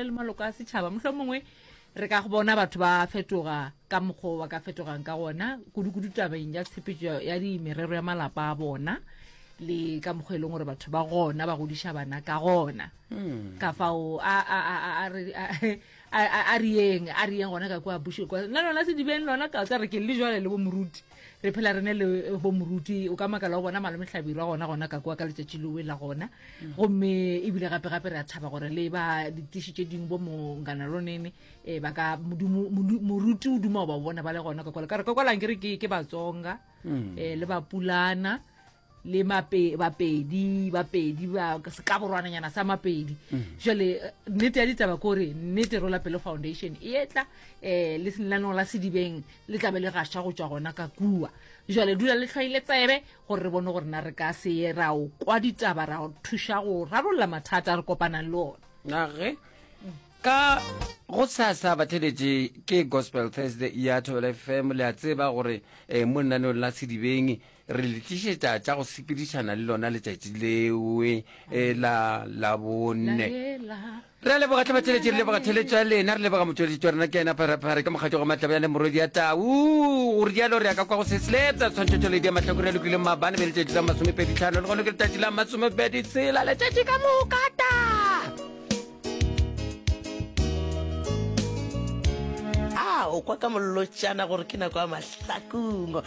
le maloko a setšhaba mohlomongwe re ka go bona batho ba fetoga ka mokgwa ba ka fetogang ka gona kudu-kudu tabeng ya tshepetso ya dimerero ya malapa a bona le ka mokgwa e leng gore batho ba gona ba godiša bana ka gona hmm. ka fao a riyeng a riyeng gona ka kua busheng nna lona sedibeng lona ka tsa re ke le jale le bo moruti re phela re ne le eh, bo moruti o ka makala wa bona malome hlabirwa gona gona ka kwa ka letšatši lewe la gona mm. gomme ebile gape gape re a thaba gore le ba ditiši tše dingwe bo mongana lonene um eh, ba ka moruti o duma o ba bona ba le gona ka kwale ka re ka kwalang ke re ke batsonga um mm. eh, le bapulana le mape bapedi bapedi ba ka borwananyana sa mapedi mm. jale eh, nnete ya ditaba ko re nnete rola pelo foundation e etla eh le senlanong la sedibeng le tlabe le gasha go tswa gona ka kua jale dula le tlhwaile tsebe gore re bone gore na re ka se ye ra o kwa ditaba ra o thuša go rarolla mathata a re kopanang le ona nage ka go sasa batheletše ke gospel thursday ya thobela fm le a tseba gore um mo lenaneng la sedibeng re le tlišetša tša go sepedišana le lona letšatši lewe e la labonne re a leboga tlhabatšheletše re leboga theletšo ya lena re leboga motšweletši wa rena ke ena pharapare ka mokgatšo go matlaba ya le morwedi ya tau gore dialo re ya ka kwa go sesletsa tshwantšhetšholedi ya mahlakore ya lokile mabane be letšatši la masomepedi tlhano le gone ke letšatši la masomepedi tshela letšatši ka mokata a o kwa ka mollotšana gore ke nako ya mahlakungo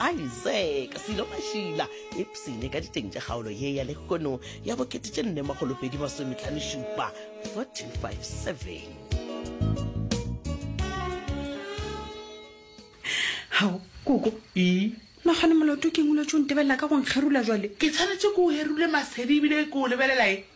Isaac Selo Mashila ipsene ka diteng tša kgaolo ye ya lehono ya bokete tše nne magolopedi masometlhanošupa 457 gao koko ee nagane molato ke ngwile tso ntebelela ka go nkgerula jale ke tshwanetse ke o herule masedi ebile ke o lebelelae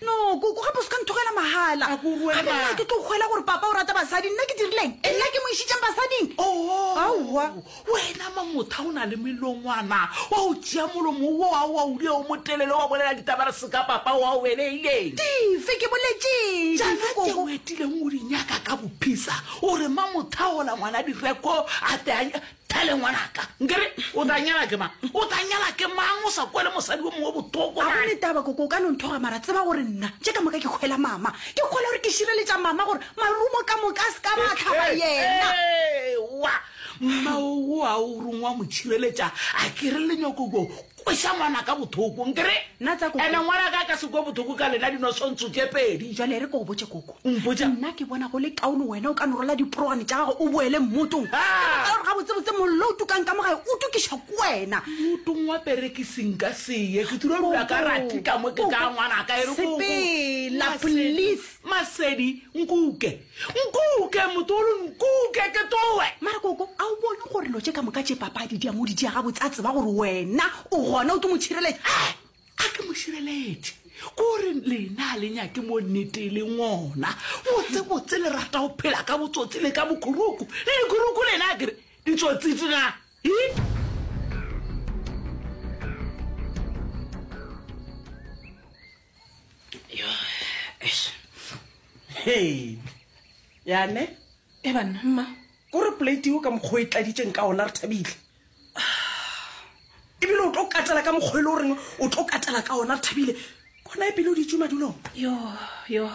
No, koko, gape o se ka nthogela mahala. A ko rue, Gape nna ke tlo hwela gore papa o rata basadi. Nna ke dirileng? Nna ke mo išitšeng basading? Oh, Aowa. wena mamotha o na le melongwana. Wa o tšea molomo wo wa wa udia o motelele wa bolela ditaba re seka papa wa o beleileng. Dife? Ke boletšeng? Tšana Dife, tše koko? o etileng o di nyaka ka bophisa. O re mamotha ola ngwana direko a te a nya- Pele ngwanaka, nkere o tla nyala ke mang? O tla nyala ke mang o sa kwele mosadi o mongwe botoko? A gone taba koko, o ka no nthoga mara tseba gore nna tše ka moka ke kgwela mama. Ke kgwela gore ke šireletša mama gore marumo ka moka a se ka ba tlhaba yena. Ewa, mma o a o rongwa mo tšhireletša a kere lenyoko ko Kweša ngwanaka bothoko, nke re? Na tsa koko? Ene ngwanaka a ka se kwe bothoko ka lena dinosontso tše pedi. Jwale re ko o botše koko. O mpotša? Nna ke bona go le kaone wena o ka no rola diproane tša gago o boele mmotong. Ha! Ka baka la gore gabotsebotse mollo o tukang ka mo gae o tukišwa ke wena. Mmotong wa perekisi nka se ye. Ke tlo dula ka rati ka mo ke tla ngwanaka. E re koko. Sepela, please. Masedi, nkuke. Nkuke, motolo, nkuke, ke towe! Mara koko, a o bone gore lo tše ka moka tše papadi di a mo di diaga botse a tseba gore wena o gona o ke motšhireletše. He! A ke motšhireletše? Kore lena a le nyake mo nnete le ngona. Botsebotse le rata go phela ka botsotsi le ka bokhuruku. Le dikhuruku lena a kere ditsotsi tsena. Hi! yane e banna mma ko re polate eo ka mokgwa o e tladitseng ka ona re thabile ebile o tlo katela ka mokgwa e le goreng o tlo katela ka ona re thabile kona e pele o ditse madulong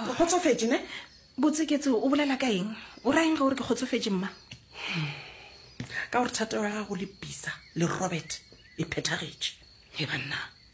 o kgotsofetse ne botseketse o bolela ka eng o rayeng ga gore ke kgotsofetse mma ka gore thatego ya gago le bisa le robert e phethagetše e banna